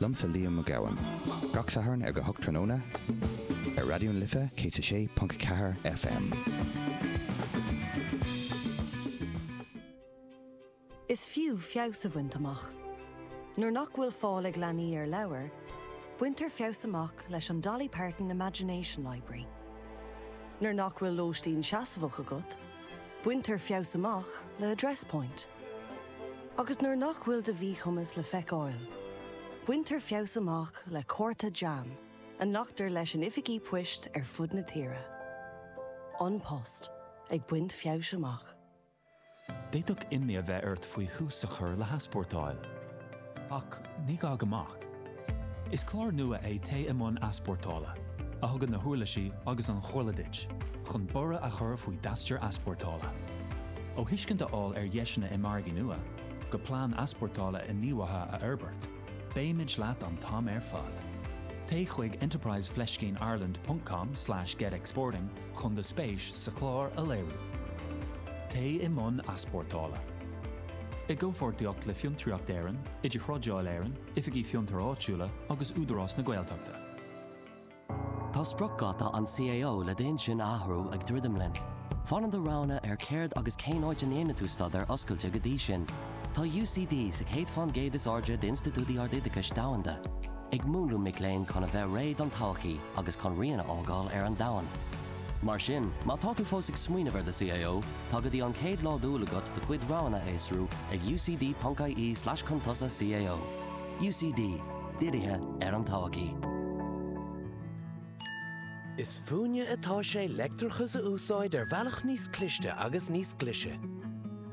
Liomsa Liam Mac Gabhann. Gach Satharn ag a hocht tráthnóna ar Raidió na Life 106.4 FM. Is fiú feabhas a bhaint amach. Nuair nach bhfuil fáil ag leanaí ar leabhair, baintear feabhas amach leis an Dolly Parton Imagination Library. Nuair nach bhfuil lóistín seasmhach agat, Baintear feabhas amach le Address Point. Agus nuair nach bhfuil do mhíchumas le feiceáil, baintear feabhas amach le cárta jam a nglactar leis in oifigí poist ar fud na tíre. An Post ag baint feabhais amach. D'fhéadfadh imní a bheith ort faoi thús a chur le heaspórtáil. Ach ní gá go mbeadh. Is clár nua é Téigh i mbun Easpórtála, a thugann na huirlisí agus an chomhairle duit chun borradh a chur faoi d'aistear easpórtála. Ó thuiscint a fháil ar dheiseanna i margaí nua, go plean easpórtála inghníomhaithe a fhorbairt, beimid leat an t-am ar fad. Téigh chuig enterprise fleiscín ireland ponc com slash get exporting chun do spéis sa chlár a léiriú. Téigh i mbun easpórtála. I gcomhpháirtíocht le Fiontraíocht Éireann, Idirthrádáil Éireann, Oifigí Fiontair Áitiúla agus Údarás na Gaeltachta. Tá spriocdháta an CAO le d'intinn a athrú ag druidim linn. Fanann do roghanna ar céard agus cén áit a ndéanfaidh tú staidéar oscailte go dtí sin. Tá UCD sa chéad fán gcéad is airde d'institiúidí ardoideachais domhanda, ag múnlú mic léinn chun a bheith réidh don todhchaí agus chun rian a fhágáil ar an domhan. Mar sin, má tá tú fós ag smaoineamh ar do CAO, tá go dtí an chéad lá d'Iúil agat do chuid roghanna a fhiosrú ag ucd.ie/chun-tosaigh-CAO. UCD, Dírithe ar an Todhchaí. Is fúinne atá sé leictreachas a úsáid ar bhealach níos cliste agus níos glaise.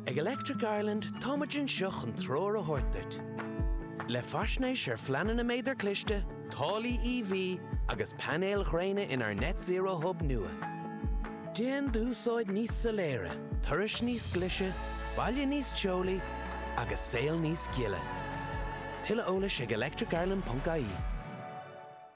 Ag Electric Ireland táimid anseo chun treoir a thabhairt duit. Le faisnéis ar phleananna méadar cliste, taraifí EV agus painéil ghréine inár Net Zero Hub nua. Déan d'úsáid níos soiléire, turais níos glaise, baile níos teolaí agus saol níos gile. Tuilleadh eolais ag electricireland.ie.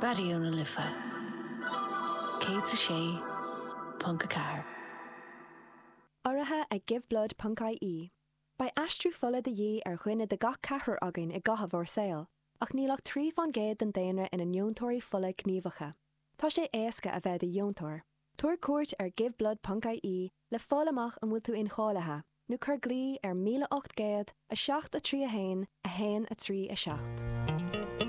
Raidió na Life 106.4. Urraithe ag Giveblood ponc IE, beidh aistriú fola de dhíth ar dhuine de gach ceathrar againn i gcaitheamh ár saol, ach níl ach trí fán gcéad den daonra ina ndeontóirí fola gníomhacha. Tá sé éasca a bheith i do dheontóir. Tabhair cuairt ar Giveblood ponc IE le fáil amach an bhfuil tú incháilithe, nó cuir glao ar 1800 7 3 1 1 3 7.